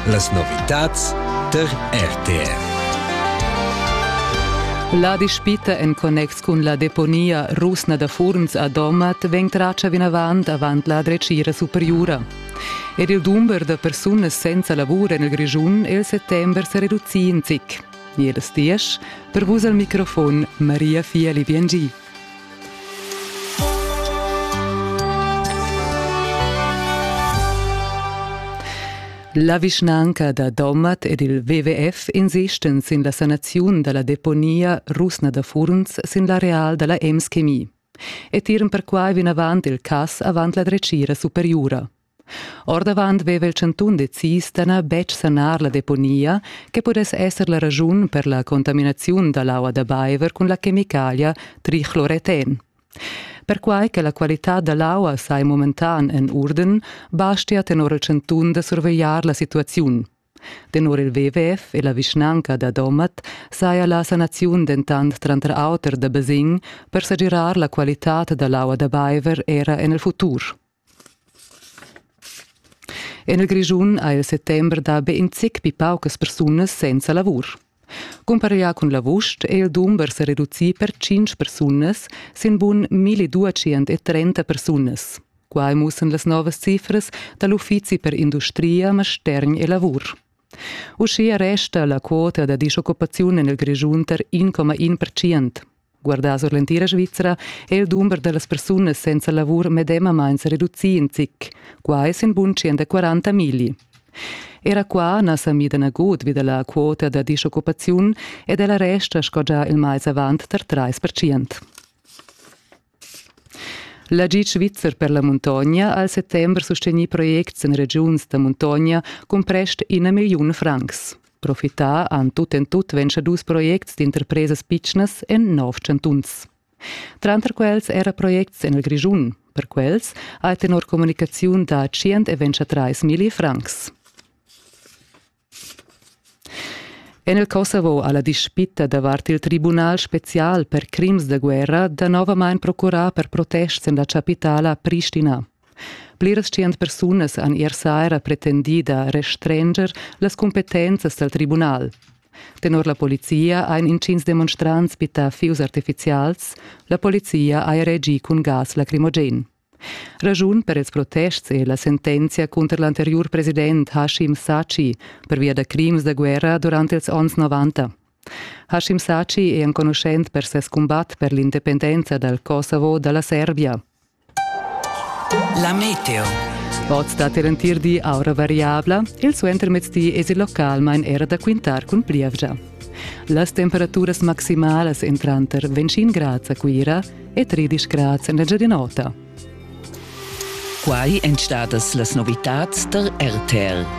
Las novitads tar RTR. La dispita en connex cun la deponia rusna da Furns a Domat vegn tratga vinavant avant la dretgira superiura. Ed il dumber da persunas senza lavur en il Grischun è il settember sa reducì in zic. Jedes diesch, per vus al microfon Maria Fieli-Biengi. La vischnanca da Domat ed il WWF insistan sin la sanaziun dalla deponia rusna da Furns sin l'areal dalla Ems Chemie e tiran perquai vinavant il cass avant la dretgira superiura. Ordavant veva il chantun decis da na betg sanar la deponia che pudess esser la raschun per la contaminaziun da l'aua da baiver cun la chemicalia trichloreten. Perquai che la qualitad da l'aua sai momentan en urden, bastia tenor il chantun da survegliar la situaziun. Tenor il WWF e la vischnanca da Domat saja la sanaziun dentant tranter auter da basegn per segirar la qualitad da l'aua da baiver era en il futur. En il Grischun ha il settember dà be in zic pli paucas persunas senza lavur. Cumpareglià cun l'avust è il dumber sa reducì per tschintg persunas sin bun 1230 persunas. Quai mussan las novas cifras da l'Uffizi per industria, mastergn e lavur. Uschia resta la quota da dischoccupaziun en il Grischun tar 1,1 percent. Guardà sur l'entira Svizra è il dumber da las persunas senza lavur medemamain sa reducì in zic. Qua è sin bunscien da 40 milli. Era qua na sa mida nagut vi da la quota da disoccupaziun ed ella resta sco già il mais avant tar 3%. L'agid svizzer per la muntogna ha al settembre sustegnì projects en regiuns da muntogna cun prest ina milliun francs. Profità han tut en tut dus projects d'interpresas pitschnas en nov chantuns. Tranter quels era projects en il Grischun. Per quels ha tenor communicaziun da 123 milli francs. En il Kosovo ha la dispitta davart il tribunal special per crims da guerra danovamain procurà per protests en la chapitala Pristina. Pliras tschient persunas han ier saira pretendì da restranger las cumpetenzas dal tribunal. Tenor la polizia ein intgins demonstrants bittà fius artificials, la polizia ha reagì cun gas lacrimogen. Ragiun per ils protests è la sentenzia cunter l'anteriur president Hashim Sachi pervia da crims da guerra durant ils onns 90. Hashim Sachi è enconuschent per ses cumbat per l'independenza dal Kosovo dalla Serbia. La meteo. Oz dat er entir di aura variabla, il suentermezdi es il localmain era da quintar cun plievgia. Las temperaturas maximalas en tranter 25 grads a Cuira e 13 grads en l'Engiadin'Ota. Quai èn stadas las novitads tar RTL.